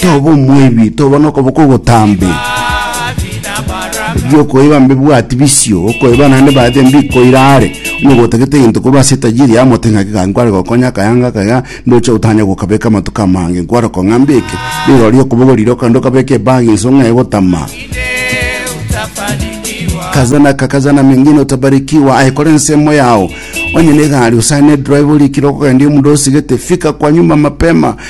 toba omwebi, toba nokoboko ogotambe, biokoiba mbibwati bisio, okoiba naende baadhi mbikoira are, onya gotagete egento koba ase etajiri yamote ng'aki gaki nkware gokonya akaya ngaka iga, ndoche gotanya gokabeka amatuko amange, nkware kong'a mbeke, rirorio okoboko riroka ndokabeke ebagi inso ng'a egotama, kaza na ka kaza na mengine utabarikiwa aikore nsemo yao onye ne gari usane drive orikire okogenda omuda osigete fika kwa nyumba mapema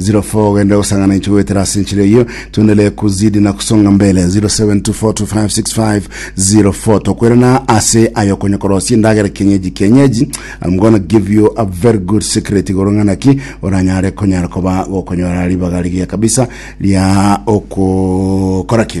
04 goetera ase enchera eyio tuendelee kuzidi na kusonga mbele 0724256504 tokwerana ase ayo konya korosia endagera kienyeji kienyeji I'm gonna give you a very good secret igoro ng'ana ki oranyare konyara koba gokonyora ribaga rigiya kabisa ria okokora ki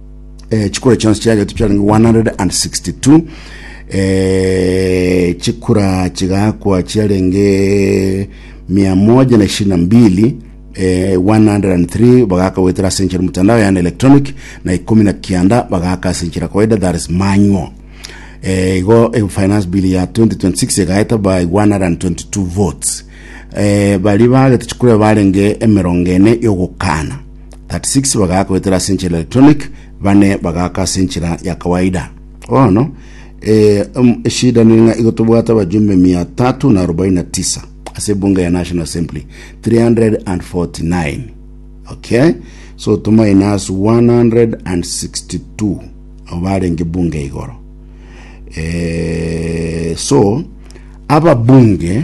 eh, chikura chionsi chiagetwe chiarenge 162 eh, chikura chigakwa chiarenge mia moja na ishirini na mbili eh, 103 bagaka gwetera ase enchera mutandao yani electronic na ikumi na kianda bagaka ase enchera kawaida that is manual eh, igo eh, finance bill ya 2026 egaeta by 122 votes eh, bari bagete chikura barenge emerongo ene yogokana 36 bagaaka goetera ase enchera electronic, bane bagaaka ase enchera ya kawaida. Bono, eh, em- eshida nere ng'a igo tobwate abajumbe 349 ase ebunge ya National Assembly 349 okay so tominus 162 abo barenge bunge igoro eh, so ababunge